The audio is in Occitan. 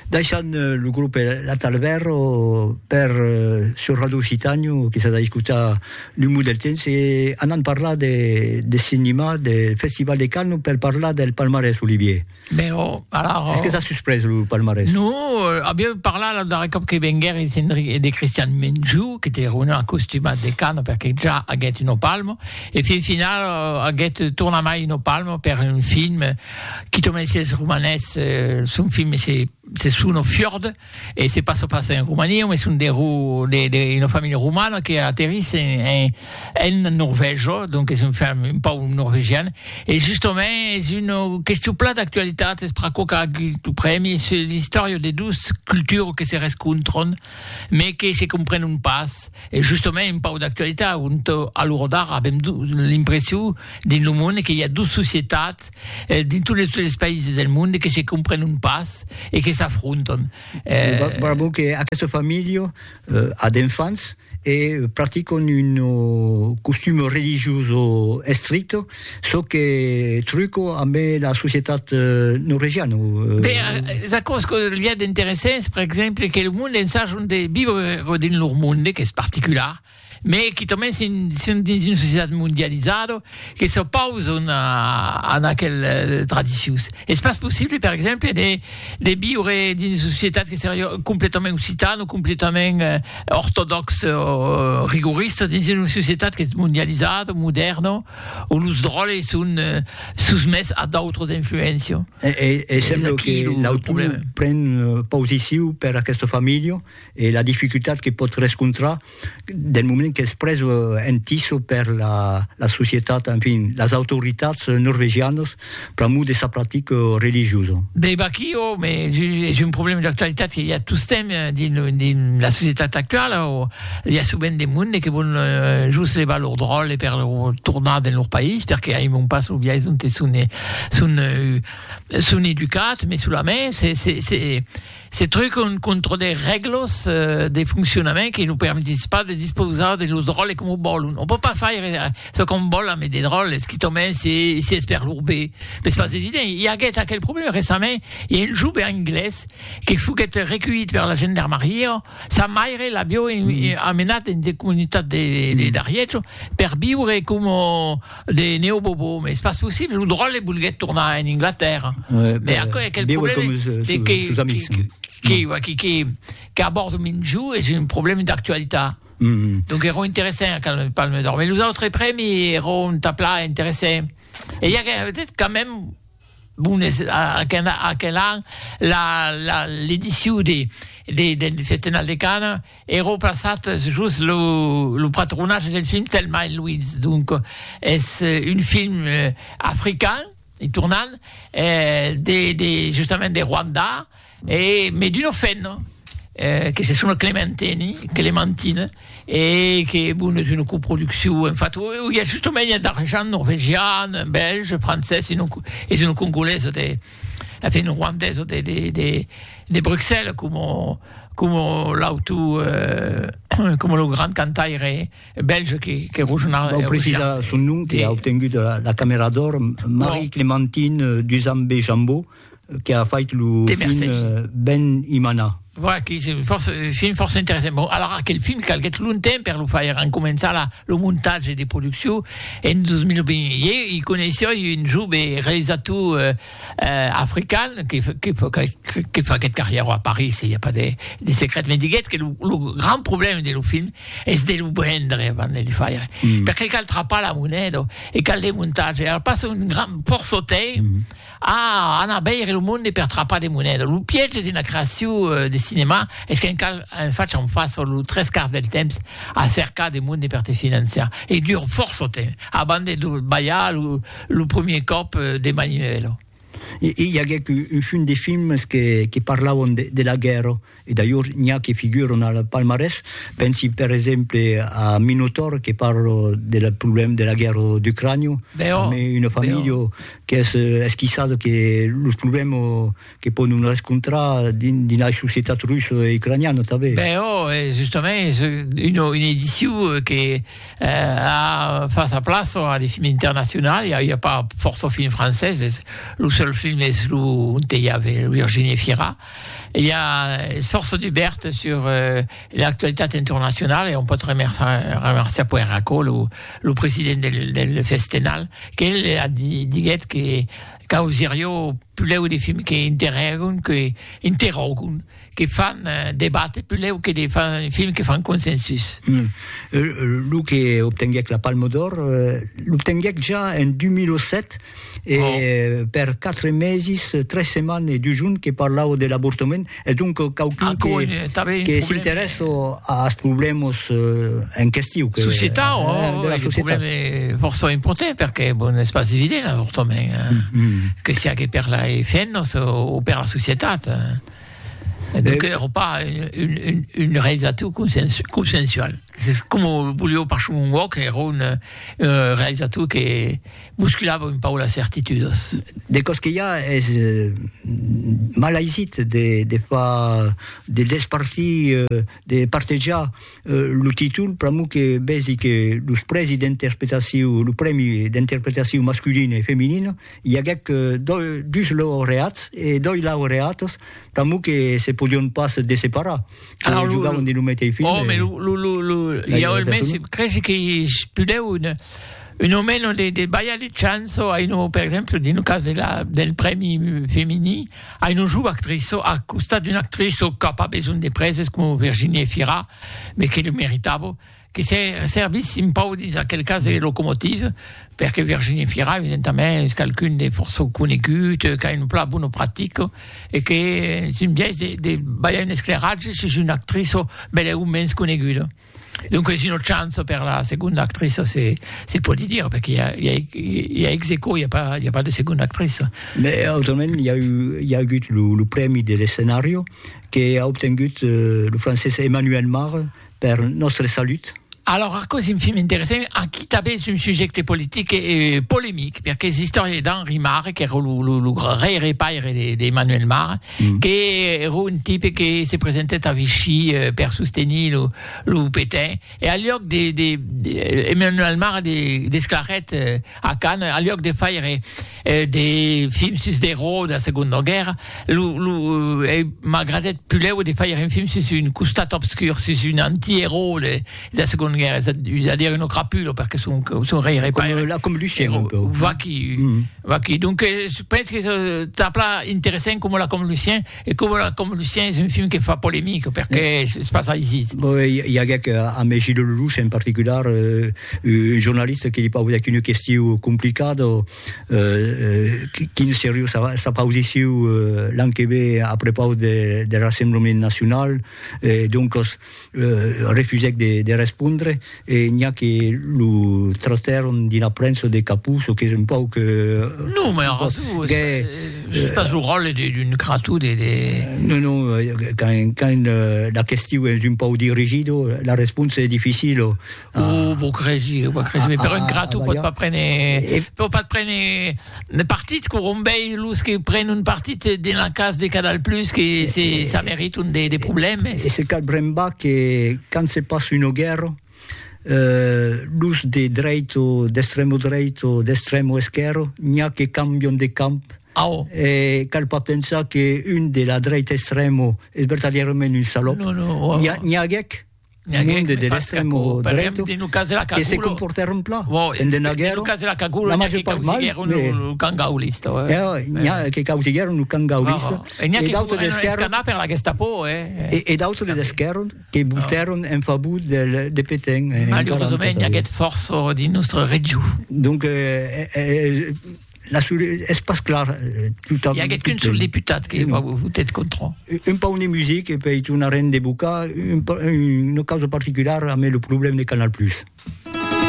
Daishan lo grup L'Atalberro per euh, sur Radio Occitànio, que s'ha d'escutar lo mot del temps, e anant parlar de, de cinema, de Festival de Cannes, per parlar del palmarès, Olivier. Ben, oh, alors... Est-ce que t'as susprès lo palmarès? No, euh, avieu parlat lo darrer còp que venguer e de, de Christian Menjou, que te reunir en costumat de Cannes, perque ja aguèt un palmo, e fin final euh, aguèt tornamai un palmo per un film Qui te mens es romanés son film se se son au fiord e se passa pas en Romania mais son de ro de de una familha romana que aterrisse en en en Norvègia donc es un film un pau norvegian e justament es una question plan d'actualitat es pr'aquò qu'a agut lo prèmi se l'istòria de dus cultures que se rescontran mais que se comprenent pas, e justament un pauc d'actualitat, ont a l'ora d'ara avèm l'impression dins lo monde que i a dos societats dins tot les les païses del monde que se comprenent pas e que s'afrontan. Bravo que aquesta familha a d'enfants e practicant un costum religioso estricte. Çò que truco amb la societat norvegiana. Be, es aquò's que li a d'interessants, per exemple, que lo monde ensajon de viure dins lor monde, qu'es particular, me quitament si son dins una societat mondializada, que s'opauson a aquel tradicions. Es pas possible, per exemple, de de viure dins una societat que seriá completament occitana o completament ortodòxa o rigorista dins una societat qu'es mondializada o modèrna, ont los dròlles son sosmés a d'autras influéncias. E sembla que l'autor pren posicion per aquesta familha, e la dificultat que pòt rescontrar del moment qu'es pres en tiso per la la societat, en fin, las autoritats norvegianas pr'amor de sa practica religiosa. Be vaquí o me es un problèma d'actualitat que i a tostemp dins dins la societat actuala o i a sovent de monde que vòl just levar lor dròlle per lor tornar dins lor país perque aimon pas lo biais onte son son son educats, mai solament se se se Se trucon contra de règlas de foncionament que nos permetís pas de dispausar de los dròlles coma vòlon. On pòt pas faire çò qu'on vòl amb de dròlles, quitament si es per lor be. M'es pas evident. I aguèt aquel problèma recentment, i a un jove anglés que foguèt reculhit per la gendarmaria, sa maire l'avió amenat dins de comunitats d'Arièch per viure coma De Neo Bobo, mais c'est pas possible, lo dròlle volguèt tornar en Inglatèrra, ouais, mais aquò aquel problème de que, sus amics, que, que, mm. que, que, que a bord Minjou és un problème d'actualitat. Mm -hmm. Donc era interessant quand le Palme d'Or, mais los autres prèmis era un tapla interessant. Et il y a peut-être quand même Bon, es aquel an l'edicion deth Festenal de Canes ero plaçat jos lo patronatge deth film Thelma et Louise, donc es un film african, en tornant, justament de Rwanda. E me d'uno fenno que se sona Clementeni, Clementine, e que bon es una coproduccion en fat o i a justomènha d'argent norvegian, bèlge, francés e non es una congolesa de en fin ruandesa de de de de Bruxelles coma coma l'auto coma lo grand cantaire bèlge que que Rochena Vau precisar son nom que a obtengut la camèra d'òr Marie-Clementine Duzambe-Jambot. que a fait lo film Ben Imana. Voilà, que se fòrça, film fòrça interessant. Bon, alara aquel film calguèt longtemps per lo faire, en començar la, lo montatge de produccion en 2020. Ieu i coneissoi un jove realisator eh, eh, african que, que, que, que faguèt carrièro a Paris, i a pas de, de secret, me diguèt que lo, lo grand problème de lo film es de lo brendre avant de le faire. Mm. Perqué cal trapar la moneda e cal de montatge. Alors passa un grand porçotei, mm. A anar veire lo monde per trapar de moneda. Lo piège d'una creacion de cinema es qu'en cal en fach en fasa lo tres quarts del temps a cercar de monde per te financiar e dur fòrça temps abans de lo balhar lo premier còp de maniuèla. I aguèc un chum de films que parlavan de la guèrra. E d'ailhors n'i a que figuran al palmarès, pensi per exemple a Minotaur que parla del problèma de la guèrra d'Ucrània, tanben una familha qu'es esquissada que los problèmas que pòdon rescontrar dins la societat russa e ucraniana tanben. Ben ò, e justament es una edicion que a fach sa plaça a de films internacionals, i a pas fòrça films francés, lo seul film es lo ont i a Virginie Fira, I a Sorsa Dubèrt sur l'actualitat internacionala e on pòt remerciar puèi Racó, lo president del Festenal, qu'el diguèt que causirió pulèu de films que interrògon, que interrògon, que fan debate pulèu que de films que fan consensus. Lo que obtenguèc la Palma d'Òr l'obtenguèc ja en 2007, e per quatre meses, tres setmanes e dus jorns que parlava de l'avortament, e donc quauqu'un que, que s'interessa als problèmas en question. Que, società, eh, oh, de la societat. Un força important, perquè bon, és pas evident l'avortament, eh? mm -hmm. que sia que per la femnas o, o per la societat. Eh? Donc, eh, pas une, une, une réalisation consensuelle. S'es coma volió par son un uòc, èra un realizator que bosculava un pauc las certitudas. De còs que i a, es mal aisit de far, de despartir, de partejar lo títol, pr'amor que vèsi que los prèsi d'interpretacion, lo prèmi d'interpretacion masculina e feminina, i aguèc dus laureats e dos laureatas, pr'amor que se podion pas desseparar. Alors, lo, jugaven de lo meteis film. Oh, mais lo, lo, lo, lo, il y a un mes, cresi que spudeu une, une o meno de, de baia de chanso, a une, per exemple, dans le cas de la, del premi femini, a une joue actrice, à costat d'une actrice qui n'a pas besoin de praises comme Virginie Fira, mais qui le méritable. que se servissin pau dins aquel cas de locomotive, perque Virginie Fira, evidentament, es qualqu'un de fòrça conegut, qu'a un plan bona practica, e qu'es un biais de, de balhar un esclairatge sus una actriça bèleu o mens coneguda. Donques una chance per la segonda actriça se, se pòdi dire, perque i a, i a, i a ex aequò, i a pas, i a pas de segonda actriça. Mais autrament, i a, eu, i a agut lo, lo prèmi de l'escenario, que a obtengut eh, lo francés Emmanuel Mare, per nòstre salut. Alòrs aquò es un film interessant, aquí tanben es un subjècte politic e polemic, perque es istòria d'Henri Marre, qu'èra lo rei repaire d'Emmanuel Marre, qu'èra un tipe que se presentèt a Vichy per sostenir lo Pétain, e al luòc de Emmanuel Marre desclarèt a Cannes, al luòc de faire de films sus d'erò da Segonda Guèrra, lo lo m'agradèt pulèu de fàir un film sus un costat obscur, sus un anti-erò de da Segonda Guèrra, es a dire uno crapulo, perque son son rei re paire, là comme Lucien un peu, vaquí vaquí, donc es pens que es tà plan interessènt coma là comme Lucien. E coma la com Lucien es un film que fa polemic perque es pas aisit. Bon, i aguec amé Gilles Lelouch en particular, un jornalista que li pausèc una question complicada, quin seriu s'apaudessiu l'an que ve a prepaus der Rassemblement Nacional, doncas refusèc de respondre e n'i a que lo trastèron dina prensa de capús o qu'es un pauc... Non, mai ara tu, estàs lo ròtle d'un cratú de... Non, non, quand la question es un pauc dirigido, la responsa es dificila. Oh, vos cresi, vos cresi, ah, però ah, ingrato ah, pot pas prendre, eh, pot pas prendre le partit que rombei los que prennent un partit de la case de Canal Plus que c'est, ça mérite un des, des problèmes. Et c'est cal bremba que quand se passe une guerre, euh, los de dreito, d'extrême dreito, d'extrême ou esquerre, n'y a que cambion de camp Ah, oh. Et cal pas penser qu'une de la droite extrême est vertadièrement une salope. Non, non, oh. N'y a, n'y a guec. un monde de l'extrem drech que se comportèron plan en de naguèro, la major part mal, mais que causiguèron lo camp gaulista, e d'autres d'esquèrra, e d'autres d'esquèrra que votèron en favor de Petain. Malauresament, i aguèt fòrça dins nòstre region. Donc, La sur, es pas clar eh, totam. Hi aguèt qu'un sol deputat que va votet contra. Un pauc de music e pei tornarem de bocar un, una causa particular amb le problème de Canal Plus.